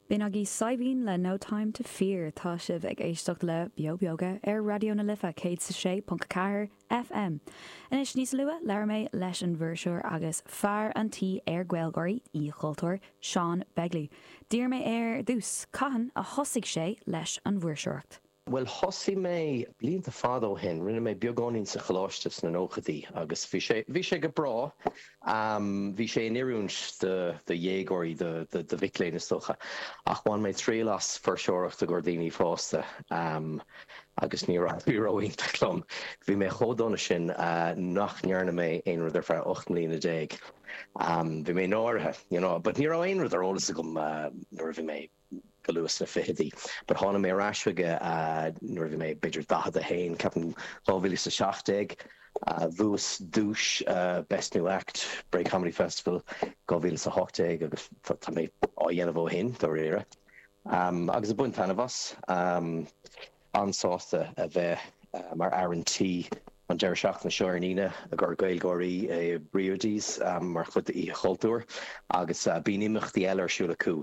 B'in agaibh Saidhbhín le No Time to Fear. Tá sibh ag éisteacht le Beo Beoga ar Raidió na Life 106.4 FM. Anois níos luath labhair mé leis an bhfuirseoir agus fear an tí ar GaelGÁIRÍ, Oíche Chultúir, Seán Begley. D'iarr mé air ar dtús cathain a thosaigh sé leis an bhfuirseoireacht. Bhuel, thosaigh mé blianta fada ó shin, rinne mé beagáinín sa choláiste sna nóchaidí agus bhí sé, bhí sé go breá. Bhí sé in oiriúint do, do dhéagóirí, do, do mhic léinn is dócha. Ach bhain mé triail as fuirseoireacht i gcomhair daoine fásta agus níor éirigh ró-iontach liom. Bhí mé chomh dona sin nach ndearna mé aon rud ar feadh ocht mbliana déag. Bhí mé náirithe, you know. But ní raibh aon rud ar eolas agam nuair a bhí mé. go luath sna fichidí. But tháinig mé ar ais chuige nuair a bhí mé b'fhéidir 41, ceapaim 2017. Bhuas duais Best New Act, Bray Comedy Festival 2018 agus tá mé á dhéanamh ó shin, dáiríre. Agus ag baint taitneamh as. an-sásta a bheith mar fhear an tí an deireadh seachtaine seo ar an Aoine i gcomhair GaelGÁIRÍ i Briody's mar chuid d'Oíche Chultúir agus bíonn imeachtaí eile ar siúl acu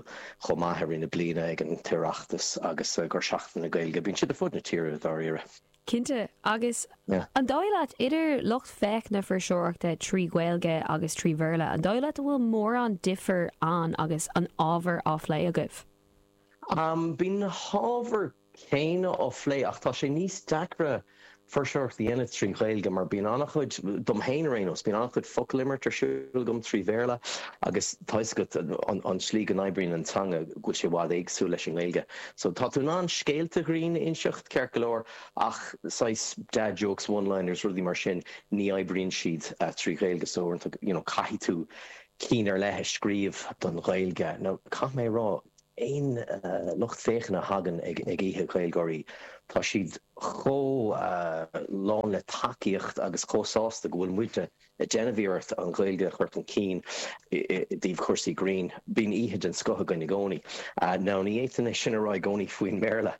chomh maith i rith na bliana ag an tOireachtas agus i gcomhair Seachtain na Gaeilge. Bíonn siad ar fud na tíre, dáiríre. Cinnte. Agus an dóigh leat, idir lucht féachana na fuirseoireachta trí Ghaeilge agus trí Bhéarla, an dóigh leat a bhfuil mórán difear ann agus an ábhar á phlé agaibh? Bíonn na hábhair chéanna á phlé ach tá sé níos deacra fuirseoireacht a dhéanamh trí Ghaeilge mar bíonn an-chuid, dom féin ar aon nós, bíonn an-chuid focal-imirt ar siúl agam trí Bhéarla agus tá fhios agat an tslí go n-oibríonn an teanga go bhfuil sé i bhfad éagsúil leis an nGaeilge so tá tú in ann scéalta grinn a inseacht ceart go leor ach saghas dad jokes, one liners, rudaí mar sin ní oibríonn siad trí Ghaeilge so uaireanta you know caithfidh tú cinn ar leith a scríobh don Ghaeilge. Now caithfidh mé a rá. aon lucht féachana a thagann ag oíche GaelGÁIRÍ, tá siad chomh lán le tacaíocht agus chomh sásta go bhfuil muidne ag déanamh iarracht an Ghaeilge a chur chun cinn i dtaobh chúrsaí grinn. Bíonn oíche den scoth againn i gcónaí. Now ní fhéadfainn é sin a rá i gcónaí faoin mBéarla.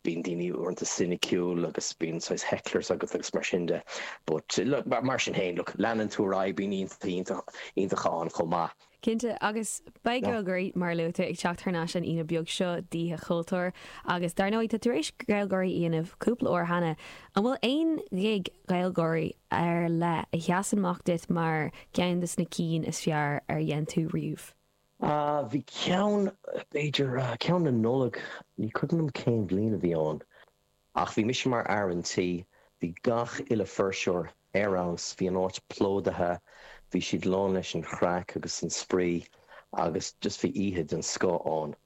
Bíonn daoine uaireanta soiniciúil agus bíonn saghas hecklers agat agus mar sin de but mar sin féin, look, leanann tú ar aghaidh, bíonn oíche iontach ann chomh maith. Cinnte, agus beidh GaelGÁIRÍ, mar a luaigh tú, ag teacht thar n-ais an Aoine beag seo d'Oíche Chultúir, agus dar ndóigh, tá tar éis GaelGÁIRÍ a dhéanamh cúpla uair cheana. An bhfuil aon gig GaelGÁIRÍ ar leith a sheasann amach duit mar cheann de na cinn is fearr ar dhein tú riamh? Bhí ceann, b'fhéidir, ceann na Nollag, ní cuimhin liom cén bhliain a bhí ann. Ach bhí mise mar fhear an tí, bhí gach uile fuirseoir ar fheabhas, bhí an áit plódaithe, bhí siad lán leis an chraic agus an spraoi agus just bhí oíche den scoth ann.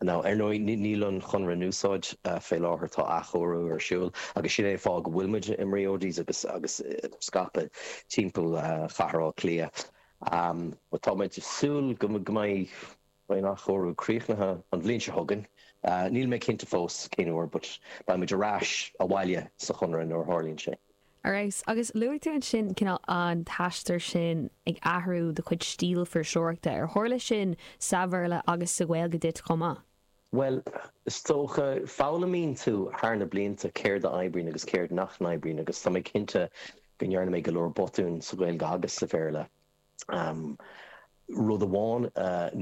Now, ar ndóigh, níl an chonradh in úsáid fé láthair, tá athchóiriú ar siúl agus sin é an fáth go bhfuil muid i mBrody's agus agus scaipthe timpeall chathair Átha Cliath but tá muid ag súil go mbeidh, Beidh an athchóiriú críochnaithe an bhliain seo chugainn. Níl mé cinnte fós cén uair but beidh muid ar ais abhaile sa Chonradh nuair a tharlaíonn sé. Ar fheabhas. Agus luaigh tú ansin cineál an t-aistear sin ag athrú do chuid stíl fuirseoireachta. Ar tharla sin sa Bhéarla agus sa Ghaeilge duit chomh maith? Bhuel, is dócha, foghlaimíonn tú thar na blianta céard a oibríonn agus céard nach n-oibríonn agus tá mé cinnte go ndearna mé go leor botúin sa Ghaeilge agus sa Bhéarla. Rud amháin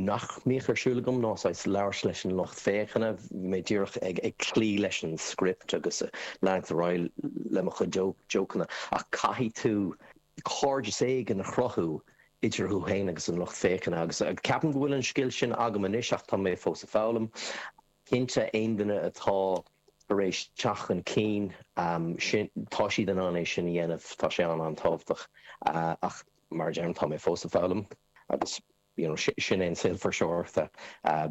nach mbíodh ar siúl agam ná saghas labhairt leis an lucht féachana. Bhí mé díreach ag cloí leis an script agus leanacht ar aghaidh le mo chuid jócanna. Ach caithfidh tú cairdeas éigin a chruthú idir thú féin agus an lucht féachana agus ceapaim go bhfuil an scil sin agam anois ach tá mé fós ag foghlaim. Cinnte, aon duine atá tar éis teacht chun cinn, sin, tá siad in ann é sin a dhéanamh, tá sé an-tábhachtach ach mar a deirim, tá mé fós ag foghlaim agus you know sin é an saol fuirseoireachta,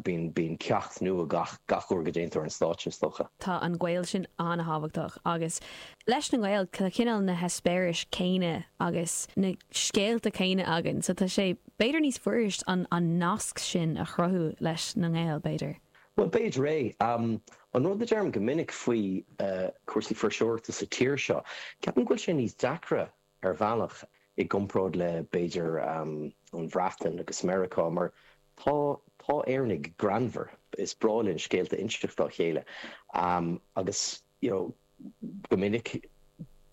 bíonn ceacht nua gach, gach uair go déantar an stáitse is dócha. Tá an gaol sin an-tábhachtach agus leis na nGael, tá cineál na heispéiris céanna agus na scéalta céanna againn so tá sé, B'fhéidir níos fuirist an nasc sin a chruthú leis na nGael, b'fhéidir? Bhuel, b'fhéidir é. An rud a deirim go minic faoi chúrsaí fuirseoireachta sa tír seo, ceapaim go bhfuil sé níos deacra ar bhealach i gcomparáid le, b'fhéidir, an Bhreatain agus Meiriceá, mar tá, tá Éireannaigh greannmhar, is breá linn scéalta a inseacht dá chéile agus, you know, Go minic,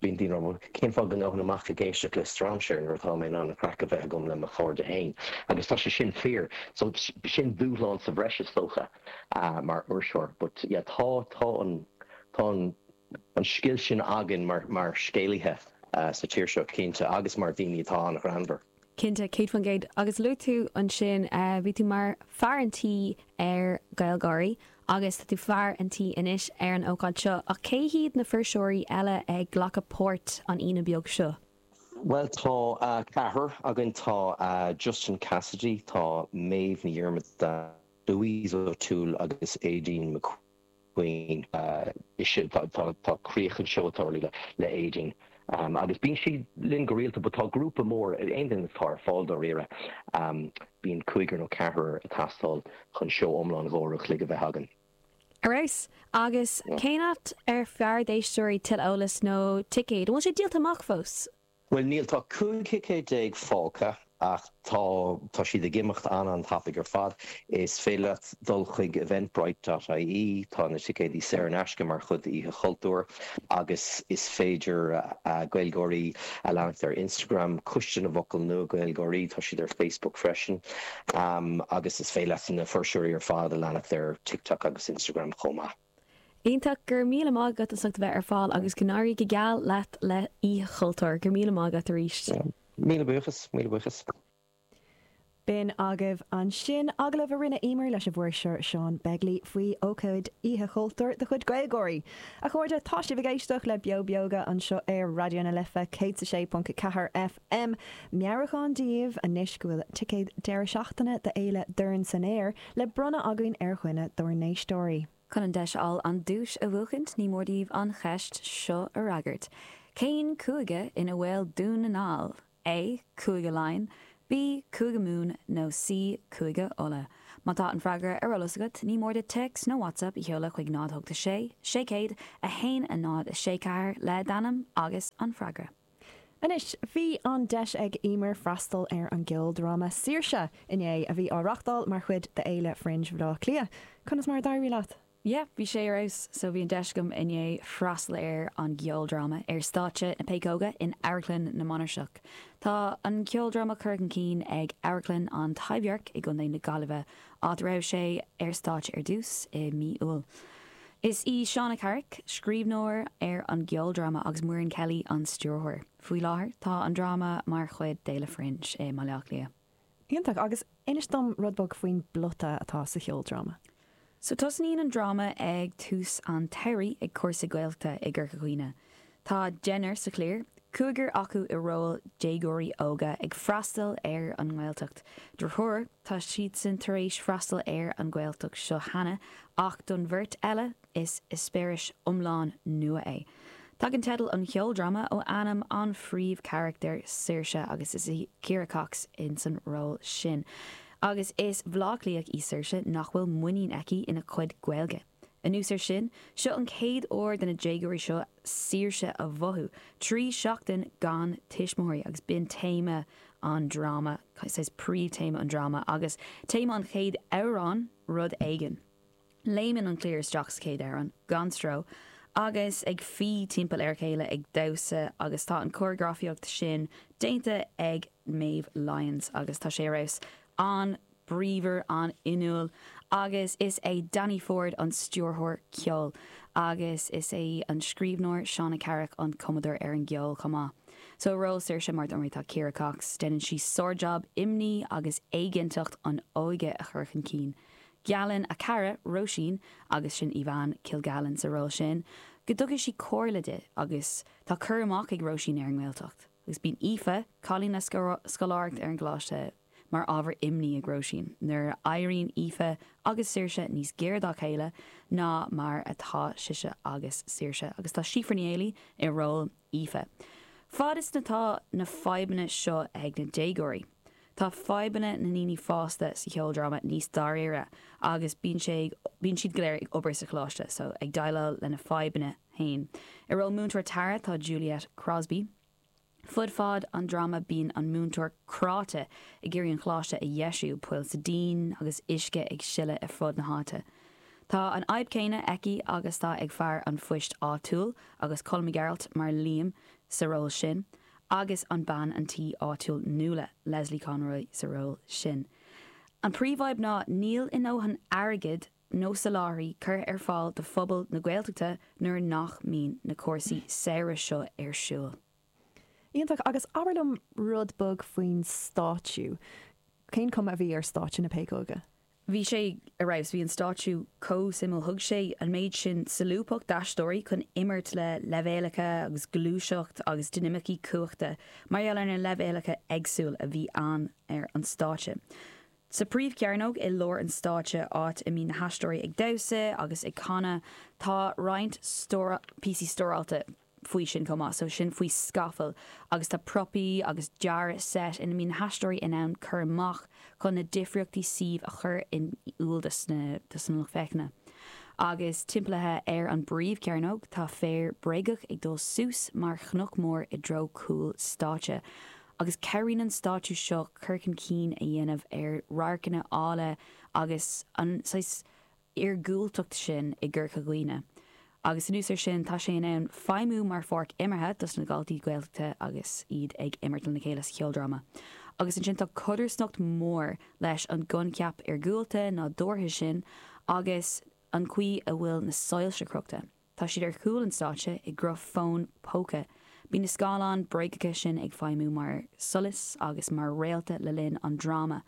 bíonn daoine á rá, cén fáth a ngabhfainn amach ag éisteacht le strainséir nuair atá mé in ann an chraic a bheith agam le mo chairde féin? Agus tá sé sin fíor. So, sin dúshlán sa bhreis is dócha mar fhuirseoir. But yeah, tá an, tá an, an scil sin againn mar, mar scéalaithe sa tír seo, cinnte, agus mar dhaoine atá an-ghreannmhar. Cinnte, céad faoin gcéad. Agus luaigh tú ansin, bhí tú mar fear an tí ar GaelGÁIRÍ agus tá tú fear an tí anois ar an ócáid seo, ach cé hiad na fuirseoirí eile ag glacadh páirt an Aoine beag seo? Bhuel tá ceathrar againn, tá Justin Cassidy, tá Méabh Ní Dhiarmada, Louise O'Toole agus Aideen McQueen. faoin Tá críoch an seó atá ar líne le Aedín agus bíonn sí linn go rialta but tá grúpa mór daoine atá ar fáil dáiríre a bíonn cúigear nó ceathrar ag teastáil chun seó iomlán dhá uair an chloig a bheith againn. Ar fheabhas! Agus cén áit ab fhearr d'éisteoirí tuilleadh eolais nó ticéad? An bhfuil sé díolta amach fós? Bhuel, níl, tá cúig thicéad déag fágtha ach tá tá siad ag imeacht an-an-tapaidh ar fad. Is féidir leat dul chuig eventbrite dot ie, tá na ticéid saor in aisce mar chuid d'Oíche Chultúir agus is féidir Gaeilgeoirí a leanacht ar Instagram, Coiste na bhFocal Nua Gaeilgeoirí, tá siad ar Facebook freisin agus is féidir leat na fuirseoirí ar fad a leanacht ar TikTok agus Instagram chomh maith. Iontach! Go raibh míle maith agat as ucht a bheith ar fáil agus go n-éirí go geal leat le Oíche Chultúir. Go raibh míle maith agat aríst. Míle buíochas, míle buíochas. B'in agaibh ansin agallamh a rinne Emer leis an bhfuirseoir Seán Begley faoi ócáid Oíche Chultúir de chuid Gaeilgeoirí. A chairde, tá sibh ag éisteacht le Beo Beoga anseo ar Raidió na Life 106.4 M, Meabhrúchán daoibh anois go bhfuil ticéad deireadh seachtaine d'Fhéile Dorn San Aer le bronnadh againn ar dhuine dár n-éisteoirí. Chun an deis a fháil an duais a bhuachaint ní mór daoibh an cheist seo a fhreagairt, Cén cúige ina bhfuil Dún na nGall? A, Cúige Laighean, B, Cúige Mumhan nó C, Cúige Uladh? Má tá an freagra ar eolas agat ní mór duit téacs nó WhatsApp a sheoladh chuig 086 600 1064 le d'ainm agus an freagra. Anois bhí an deis ag Emer freastal ar an gceoldráma Saoirse? inné, a bhí á reachtáil mar chuid d'Fhéile Fringe Bhaile Átha Cliath. Conas mar a d'éirigh leat? Yeah, bhí sé ar fheabhas. So bhí an deis agam inné freastal ar an gceoldráma ar stáitse na Péacóige in Amharclann na Mainistreach. Tá an ceoldráma curtha chun cinn ag Amharclann an Taibhdhearc i gContae na Gaillimhe, áit a raibh sé ar stáitse ar dtús i mí Iúil. Is í Shauna Carrick scríbhneoir ar an gceoldráma agus Muireann Kelly an stiúrthóir. Faoi láthair tá an dráma mar chuid d'Fhéile Fringe i mBaile Átha Cliath. Iontach! Agus inis dom rud beag faoin bplota atá sa cheoldráma. So tosnaíonn an dráma ag tús an tsamhraidh ag cúrsa Gaeltachta i gCorca Dhuibhne. Tá deichniúr sa chliar, cúigear acu i róil déagóirí óga ag freastal ar an nGaeltacht. Do thriúr, tá siadsan tar éis freastal ar an Ghaeltacht seo cheana ach don bheirt eile is eispéireas iomlán nua é. Tagann teideal an cheoldráma ó ainm an phríomhcharachtair, Saoirse, agus is í Ciara Cox ins an ról sin. Agus is Bleá Cliathach í Saoirse nach bhfuil muinín aici ina cuid Gaeilge. Anuas ar sin, seo an chéad uair do na déagóirí seo saoirse a mhothú, trí seachtaine gan tuismitheoirí agus b'in téama an dráma, saghas príomhthéama an dráma agus téama an chéad amhrán, Rud Éigin. Léimeann an cliar isteach sa chéad amhrán gan stró agus ag fí timpeall ar a chéile ag damhsa agus tá an córagrafaíocht sin déanta ag Meadhbh Lyons agus tá sé ar fheabhas an bríomhar an-fhuinniúil agus is é Danny Forde an stiúrthóir ceoil agus is é an scríbhneoir Shauna Carrick an cumadóir ar an gceol chomh maith. Sa ról Saoirse Máire Treasa Mhuire tá Ciara Cox, déanann sí sárjab imní agus éiginnteacht an óige a chur chun cinn. Geallann a cara, Róisín, agus sin Éabha Kilgallen sa ról sin, go dtabharfaidh sí comhairle di agus tá cur amach ag Róisín ar an nGaeltacht agus bíonn Aoife, cailín le scoláireacht ar an gColáiste, mar ábhar imní ag Róisín nuair a éiríonn Aoife agus Saoirse níos gaire dá chéile ná mar atá sise agus Saoirse agus tá Síofra Ní Éilí i ról Aoife. Fad is atá na fadhbanna seo ag na déagóirí, tá fadhbanna na ndaoine fásta sa cheoldráma níos dáiríre agus bíonn sé bíonn siad go léir ag obair sa choláiste so ag déileáil lena fadhbanna féin. I ról múinteoir Tara tá Juliette Crosbie. Fud fad an dráma bíonn an múinteoir cráite ag iarraidh an choláiste a dheisiú, poill sa díon agus uisce ag sileadh ar fud na háite. Tá an fhadhb céanna aici agus atá ag fear an phoist áitiúil, agus Colm Mac Gearailt mar Liam sa ról sin, agus an bean an tí áitiúil Nuala, Lesley Conroy sa ról sin. An príomhfhadhb ná níl a ndóthain airgid nó soláthairtí curtha ar fáil do phobal na Gaeltachta nuair nach mbíonn na cúrsaí samhraidh seo ar siúl. Iontach. Agus abair liom rud beag faoin stáitsiú. Cén chuma a bhí ar stáitse na Péacóige? Bhí sé ar fheabhas. Bhí an stáitsiú chomh suimiúil. Thug sé an méid sin solúbthacht d'aisteoirí chun imirt le leibhéalacha agus gluaiseacht agus dinimicí cumhachta mar gheall ar na leibhéalacha éagsúil a bhí ann ar an stáitse. Sa phríomhchearnóg i lár an stáitse, áit a mbíonn na haisteoirí ag damhsa agus ag canadh, tá roinnt píosaí stóráilte faoi sin chomh maith, so sin faoi scafall, agus tá propaí agus dearadh seit ina mbíonn na haisteoirí in ann cur amach chun na difríochtaí suímh a chur in iúl dos na lucht féachana. Agus timpeallaithe ar an bpríomhchearnóg tá féar bréagach ag dul suas mar chnoc mór i dtreo cúl stáitse. agus cabhraíonn an stáitsiú seo cur chun cinn a dhéanamh ar radharcanna áille agus an saghas iargúltacht sin i gCorca Dhuibhne agus anuas ar sin tá sé in ann feidhmiú mar pháirc imeartha dos na daltaí Gaeltachta agus iad ag imirt lena chéile sa cheoldráma agus ansin tá codarsnacht mór leis an gcoincheap iargúlta, nádúrtha sin agus an chaoi a bhfuil na soilse crochta. Tá siad ar chúl an stáitse i gcruth fón póca. Bíonn na scáileáin bréagacha sin ag feidhmiú mar solas agus mar réalta le linn an dráma,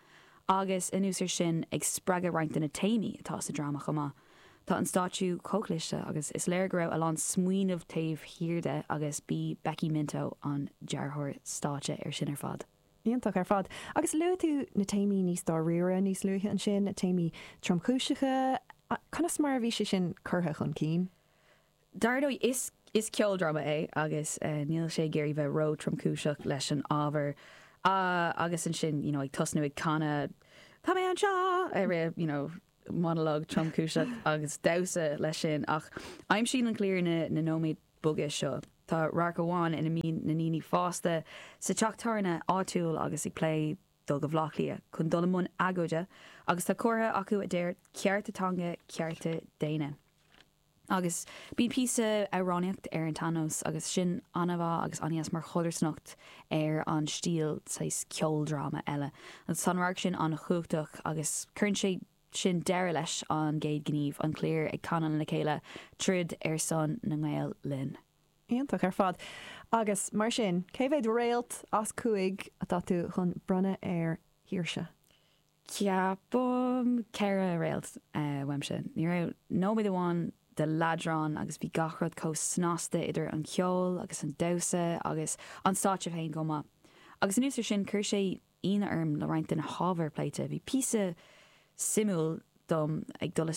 agus anuas ar sin, ag spreagadh roinnt de na téamaí atá sa dráma chomh maith. Tá an stáitsiú chomh cliste agus is léir go raibh a lán smaoineamh taobh thiar de agus b'í Becky Minto an dearthóir stáitse ar sin ar fad. Iontach ar fad. Agus luaigh tú na téamaí níos dáiríre níos luaithe ansin, na téamaí tromchúiseacha. Conas mar a bhí sé sin curtha chun cinn? Dar ndóigh, is is ceoldráma é agus níl sé ag iarraidh bheith ró-tromchúiseach leis an ábhar. Agus ansin, you know, ag tosnú ag canadh Tá mé anseo! I rith, you know, monologue tromchúiseach agus damhsa leis sin ach aimsíonn an cliar na nóiméid beaga seo. Tá radharc amháin ina mbíonn na daoine fásta sa teach tábhairne áitiúil agus ag plé dul go Bhleá Cliath chun dul i mbun agóide agus tá comhartha acu a deir cearta teanga cearta daonna. Agus bíonn píosa amhránaíocht ar an tsean-nós agus sin ana-mhaith agus ana-dheas mar chodarsnacht ar an stíl saghas ceoldráma eile. Agus tá an radharc sin an-chumhachtach agus cuireann sé sin deireadh leis an gcéad gníomh, an chliar ag canadh le chéile, Troid ar son na nGael linn. Iontach ar fad. Agus mar sin, cé mhéad réalt as cúig atá tú chun bronnadh ar Shaoirse? Ceapaim ceithre réalt uaimse. Ní raibh nóiméad amháin de leadrán agus bhí gach rud chomh snasta idir an ceol agus an damhsa agus an stáitse féin chomh maith. Agus anuas ar sin, chuir sé ionadh orm le roinnt de na hábhair a pléite. Bhí píosa suimiúil dom ag dul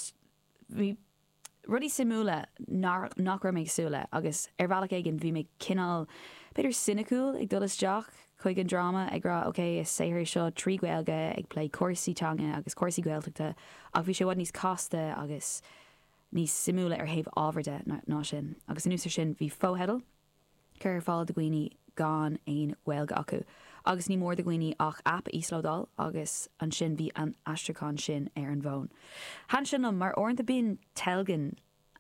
rudaí suimiúla nach raibh mé ag súil le agus ar bhealach éigin bhí mé cineál, b'fhéidir soiniciúil ag dul isteach chuig an dráma ag rá ok, is saothar é seo trí Ghaeilge ag plé cúrsaí teanga agus cúrsaí Gaeltachta ach bhí sé i bhfad níos casta agus níos suimiúla ar thaobh ábhair de ná sin agus anuas ar sin bhí fotheidil curtha ar fáil do dhaoine gan aon Ghaeilge acu agus níor mhór do dhaoine ach app a íoslódáil agus ansin bhí an aistriúchán sin ar an bhfón. Thaitin sin liom mar uaireanta bíonn teilgean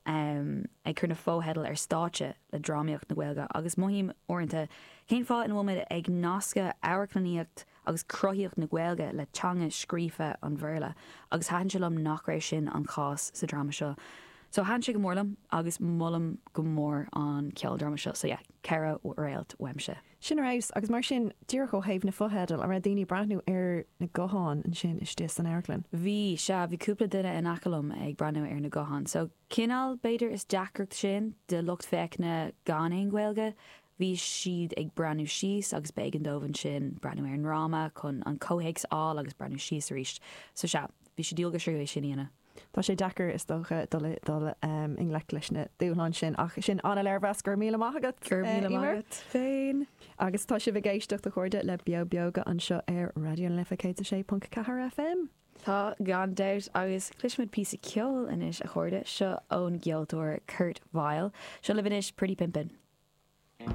ag cur na fotheidil ar stáitse le drámaíocht na Gaeilge agus mothaím uaireanta cén fáth ina bhfuil muid ag nascadh amharclannaíocht agus cruthaíocht na Gaeilge le teanga scríofa an Bhéarla agus thaitin sé liom nach raibh sin an cás sa dráma seo so thaitin sé go mór liom agus molaim go mór an ceoldráma seo so yeah ceithre réalt uaimse. Sin ar fheabhas agus mar sin, díreach ó thaobh na fotheidil, an raibh daoine ag breathnú ar na gutháin ansin istigh san amharclann? Bhí, sea, bhí cúpla duine in aice liom ag breathnú ar na gutháin so cineál, b'fhéidir is deacracht sin do lucht féachana gan aon Ghaeilge Bhí siad ag breathnú síos agus b'éigean dóibh ansin breathnú ar an dráma chun an comhthéacs a fháil agus breathnú síos arís. So sea, bhí sé diail go tríú é sin a dhéanamh. Tá sé deacair is dócha dul i ngleic leis na dúshláin sin ach sin an-léirmheas, go raibh míle maith agat! Go raibh míle maith agat féin! Agus tá sibh ag éisteacht a chairde le Beo Beoga anseo ar Raidió na Life 106.4 FM. Tá gan dabht agus cloisfimid píosa ceoil anois a chairde, seo ón gceoltóir Kurt Vile, seo libh anois Pretty Pimpin'.